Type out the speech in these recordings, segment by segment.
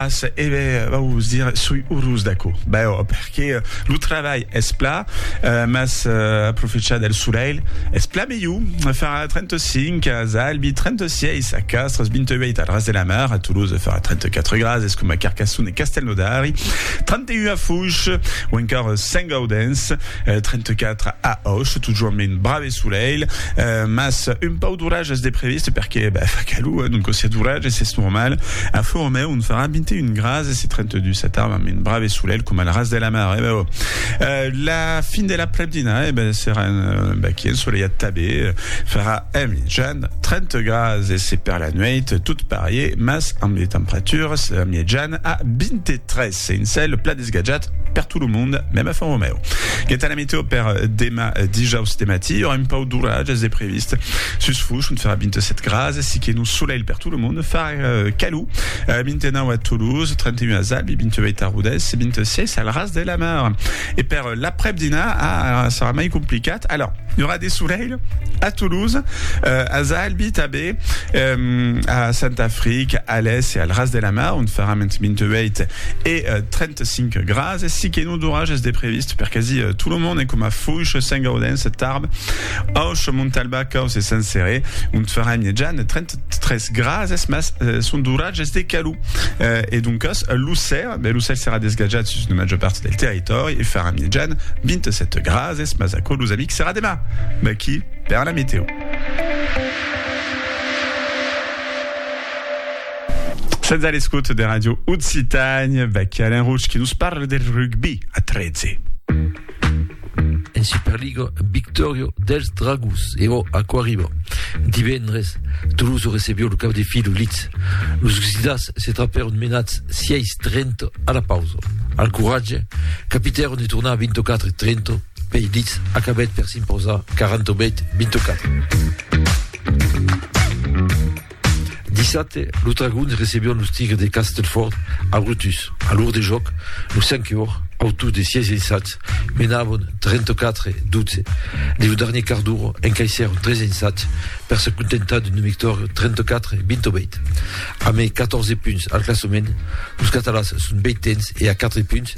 As, e be, vos dire, soi urós d'aquò. Bèò, perque lo travalh es pla, mas aprofechar del solelh es pla melhor. Farà 35 as Albi, 36 a Castres, 28 al Ras de la Mar, a Toulouse farà 34 grads, es coma Carcasson e Castelnaudari, 31 a Fouch, o encòr Saint-Gaudens, 34 a Auch, totjorn men brave solelh, mas un pauc d'orages de previst, perque, bè, fa calor, donc si a d'orages es normal. A Flo Romeu on farà 21 grads e se 32 sa tarda amb un brave solelh com al ras de la mar. Eh ben, oh. euh, la fin de la prepdina, eh ben, serà un, euh, ben, qui ensoleillat tabé, farà en mitjan 30 grads e se per la nueit tot parier, mas amb de temperatures en mitjan a 23. Sense le plat desgatjat per tot lo monde, mèm a Font Romèu. Quant a la meteo per demà dijaus de matí, aurà un pauc d'oratges de previst. Sus Fush, ont farà 27 grases, siqué lo solelh per tot lo monde, farà calor, 29 a Toulouse, 31 a Zalbi, 28 a Rodés, 26 al Ras de la Mar. E per l'aprèp-dinar, ah, serà mai complicat. Alòr, i aurà de solelh, A Toulouse, als Albi tanben, a Sant'Afric, Alès e al Ras de la Mar, ont faram entre 28 e 35 grads, si que non d'orages de previst per quasi tot lo monde, coma Foish, Saint-Gaudens, Tarbes, Auch, Montalba, Caus e Saint-Céré, ont faram mièjan 33 grads, mas son d'orages de calor. E doncas, Lucer, Bèl ocèl s'èra desgatjat sus una màger part del territòri e farà mièjan 27 grads, es mas aquò los amics serà demà, vaquí per la metèo. Sètz a l'escota de Ràdio Occitània, vaquí Alain Roch que nos parla del rugbi a 13. En Superliga, victòria dels Dragons e o aquò arriba. Divendres, Toulouse recebió lo cap de filo Leeds. Los Oxidats se trapèron menats 6-30 a la pausa. Al coratge, capitèron de tornar 24-30 pei Leeds acabèt per s'imposar 48-24. Dissabte, los Dragons recebián los Tigres de Castleford a Brutus. A l'or de jòc, los Sankeors, autors de 6 ensats, menavan 34-12. Dins lo darnier quart d'ora, encaissèron 3 ensats per se contentar d'una victòria 34-28. A mai 14 punts al classament, los Catalans son ventens e a 4 punts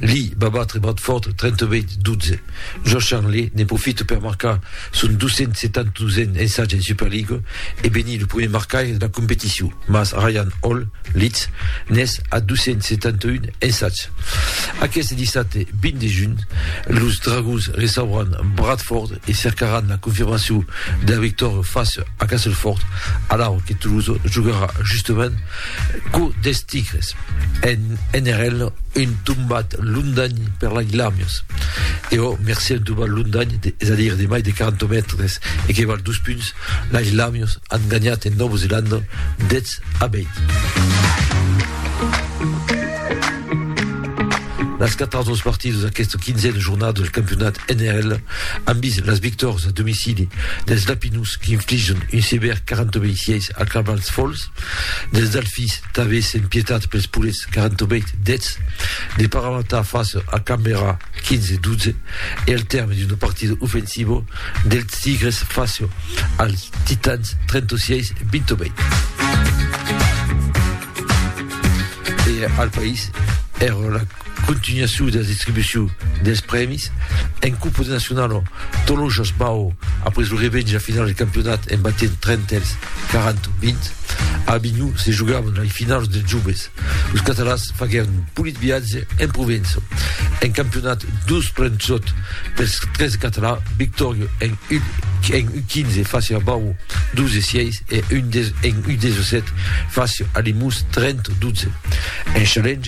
Lee va batre Bradford 38-12. Josh Charnley ne profite per marcar son 272n ensatge en Superliga e benir lo primièr marcaire de la competicion, mas Ryan Hall, Leeds, n'es a 271 ensatge. Aqueste dissabte 20 de junh, los Dragons recebràn Bradford e cercaràn la confirmacion de la victòria fàcia a Castleford, alara que Toulouse jogarà justament Quò des tigres, en NRL un tombat londany per la Glamius. E ò mercé un tombat londany, de, es a dire de mai de 40 mètres e que val dos punts, la Glamius an ganhat en Nòva Zelanda 10 a 20. Las quatras dos partidas d'aquesta quinzena jornada del campionat NRL an vist las victòrias a domicili dels Lapinus qu'infligen un sevèr 40 26 a Clavals Falls Dels Delfins, tanben sen pietat pels polets 48 deths, de Paramata face a Canberra 15 12 e al tèrme d'un partido ofensivo dels Tigres face als Titans 36 28. E al país, èra la Continuacion dera distribucion des prèmis. En Copa de Nacionalo, Tolojas bau après lo revènge a finala de campionat en batent Trentèls 40-20. A Avinhon se jogavan lai finaus dels joves. Los catalans faguèron un polit viatge en Provença. En campionat 2 plan sòt pels 13 catalans, victòria en U15 fàcia a Bau 12-6 e en U17 fàcia a Limós 30-12. En Challenge,